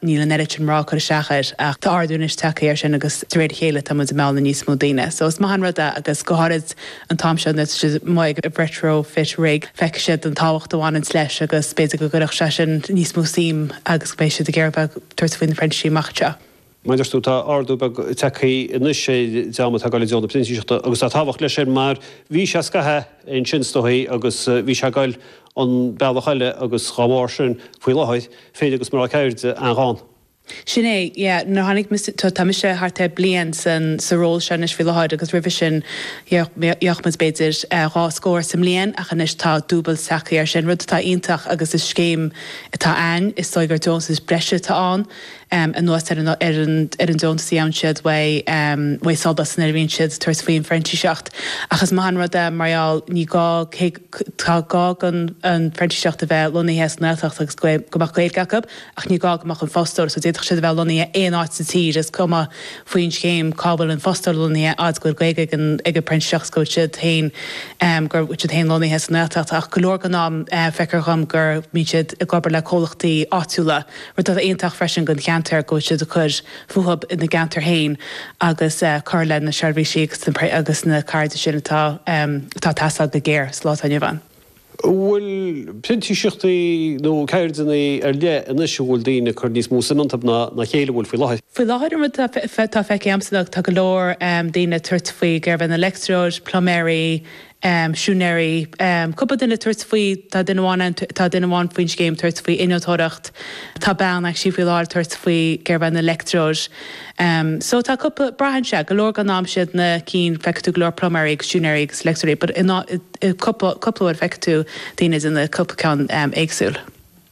Níl an oiread sin mná ag cur isteach air ach tá ardú anois tagtha air sin agus de réir a chéile táimid ag mealladh níos mó daoine. So is maith an rud é agus go háirid an t-am seo nuair atá siad amuigh ag retrofit rig feicfidh siad an tábhacht a bhaineanns leis agus b'fhéidir go gcuirfidh sé sin níos mó suim agus go mbeidh siad ag iarraidh bheith ag tabhairt faoi na printíseachtaí amach anseo. Mar a dúirt tú tá ardú beag tagtha anois ar an dream atá ag dul i dtreo na printíseachta agus tá tábhacht leis sin mar bhí sé scaitheamh ansin is dóigh agus bhí sé ag dul an bealach eile agus dá bharr sin, faoi láthair, fir agus mná ceirde an-ghann. Sin é, yeah, nuair a tháinig mise, tá mise thart ar bliain sa ról seo anois faoi láthair agus roimhe sin, yeah, bheadh muid b'fhéidir dhá scór sa mbliain ach anois tá dúbailt tagtha ar sin, rud atá iontach agus is scéim atá ann, is dóigh gur deontas breise atá ann, em, anuas ar an, ar an, ar an deontas a gheobhann siad uaidh, em, uaidh Solas nuair a bhíonn siad ag tabhairt faoin phrintíseacht ach is maith an rud é mar gheall, ní gá, cé. Tá gá go an printíseach a bheith lonnaithe sa nGaeltacht agus go mbeadh Gaeilge acu ach ní gá go mbeadh an fostóir, so d'fhéadfadh siad a bheith lonnaithe aon áit sa tír, is cuma faoin scéim cá bhfuil an fostóir lonnaithe, a fhad is go bhfuil Gaeilge ag an bprintíseach is go bhfuil siad féin, go bhfuil siad féin lonnaithe sa nGaeltacht. Ach go leor den am feictear dhom go mbíonn siad ag obair le comhlachtaí áitiúla, rud atá iontach freisin don cheantar go bhfuil siad ag cur fúthu ina gceantar féin agus cur le na seirbhísí agus na ceirde sin atá atá teastáil go géar sa lá atá inniu ann. An bhfuil printíseachtaí nó ceirdeanna ar leith anois a bhfuil daoine ag cur níos mó suim iontu ná ná a chéile faoi láthair? Faoi láthair an rud atá atá feicthe a'msa ná tá go leor daoine ag tabhairt faoi ceird an leictreoir, pluiméirí, siúinéirí, cúpla duine ag tabhairt faoi, tá duine amháin ann, tá duine amháin faoin scéim ag tabhairt faoi innealtóireacht, tá bean anseo faoi láthair ag tabhairt faoi ceird an leictreoir. So tá cúpla, braitheann sé, go leor den am is iad na cinn feicfidh tú go leor pluiméirí agus siúinéirí agus leictreoirí but cúpla cúpla uair feicfidh tú daoine ag déanamh cúpla ceann éagsúil.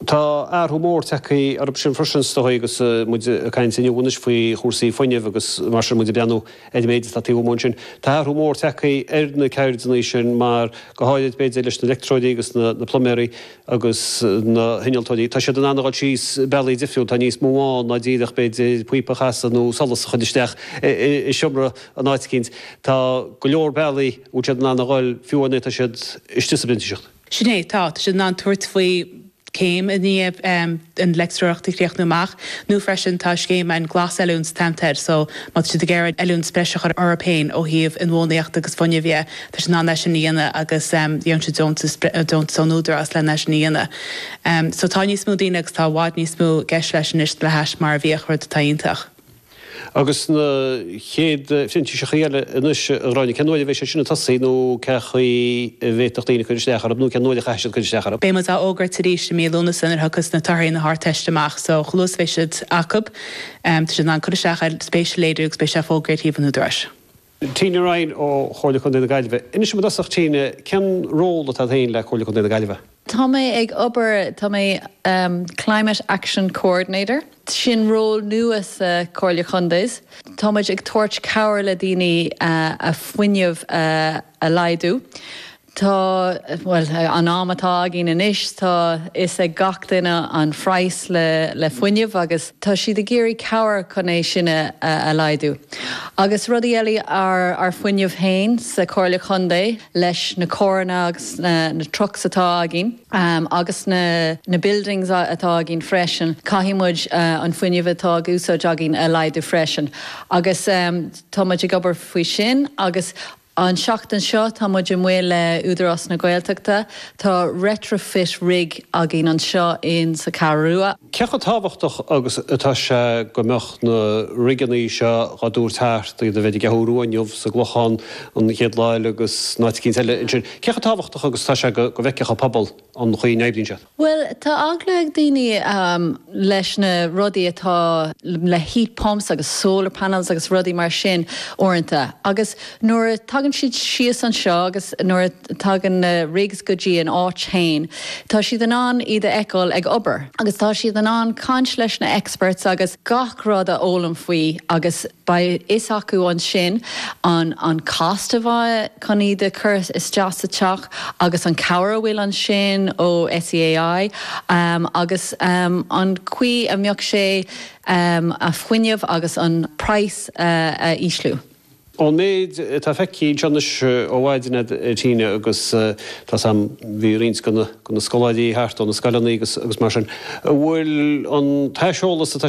Tá athrú mór tagtha orthu sin freisin is dóigh agus muid ag caint inniu anois faoi chúrsaí fuinnimh agus mar sin muid ag breathnú ar an méid atá taobh amuigh ansin. Tá athrú mór tagtha ar na ceirdeanna sin mar, go háirid b'fhéidir leis na leictreoirí agus na pluiméirí agus na hinnealtóirí, tá siad in ann a dhul síos bealaí difriúla, tá níos mó ann ná díreach b'fhéidir píopa a chasadh nó solas a chur isteach i seomra in áit eicínt. Tá go leor bealaí a bhfuil siad in ann a dhul fiú nuair atá siad istigh sa bprintíseacht. Sin é, tá. Tá siad in ann tabhairt faoi céim i ndiaidh an leictreoireacht a chríochnú amach nó freisin tá scéim ann glasoiliúint atá air so má tá siad ag iarraidh oiliúint breise a chur orthu féin ó thaobh inbhuanaitheacht agus fuinnimh dhe, tá siad in ann é sin a dhéanamh agus gheobhann siad deontas deontas ón Údarás len é sin a dhéanamh. So tá níos mó daoine agus tá i bhfad níos mó i gceist leis anois le hais mar a bhíodh, rud atá iontach. Agus na chéad phrintíseachaí eile anois a Ghráinne, cén uair a bheidh siad sin ag tosaí nó cé chaoi a bhféadfadh daoine cur isteach orthu nó cén uair a chaithfidh siad cur isteach orthu? Beidh muid á fhógairt arís i mí Lúnasa nuair a thiocfas na torthaí na hArdteiste amach so chomh luath is a bheidh siad acu tá siad in ann cur isteach air, spéis a léiriú agus beidh sé fógraithe ar shuíomh an Údaráis. Tina Ryan ó Chomhairle Contae na Gaillimhe. Inis dom i dtosach, Tina, cén ról atá agat féin le Comhairle Contae na Gaillimhe? Tá mé ag obair, tá mé Climate Action Coordinator. Sin ról nua sa Comhairle Contae. Tá muid ag tabhairt cabhair le daoine a fuinneamh a laghdú. Tá, bhuel, an am atá againn anois, tá fhios ag gach duine an phraghas le fuinneamh agus tá siad ag iarraidh cabhair chun é sin a laghdú. Agus rudaí eile, ár fuinneamh féin sa Chomhairle Chontae leis na carranna agus na trucks atá againn agus na buildings atá againn freisin, caithfidh muid an fuinneamh atá ag úsáid againn a laghdú freisin. Agus tá muid ag obair faoi sin agus. An tseachtain seo tá muid amuigh le Údarás na Gaeltachta. Tá retrofit rig againn anseo in sa Ceathrú Rua. Cé chomh tábhachtach agus atá sé go mbeadh na rigeanna seo dhá dtabhairt thart, iad a bheith ar an gCeathrú Rua inniu, sa gClochán an chéad lá eile agus in áit eicínt eile ansin. Cé chomh tábhachtach agus atá sé go bhfeicfeadh an pobal an chaoi a n-oibríonn siad? Bhuel, tá eagla ag daoine leis na rudaí atá le heat pumps agus solar panels agus rudaí mar sin uaireanta agus nuair a tagann siad síos anseo agus nuair a tagann na rigs go dtí an áit féin, tá siad in ann iad a fheiceáil ag obair agus tá siad in ann caint leis na experts agus gach rud a fhoghlaim faoi agus. Beidh a fhios acu ansin an an cost a bheidh chun iad a chur isteach sa teach agus an cabhair a bhfuil ansin ó SEAI agus an chaoi a mbeadh sé a fuinneamh agus an praghas a ísliú. Ón méid atá feicthe anseo anois ó mhaidin a Tina agus tá a fhios agam bhí roinnt de na scoláirí thart ó na scoileanna agus mar sin, an bhfuil an t-aiseolas atá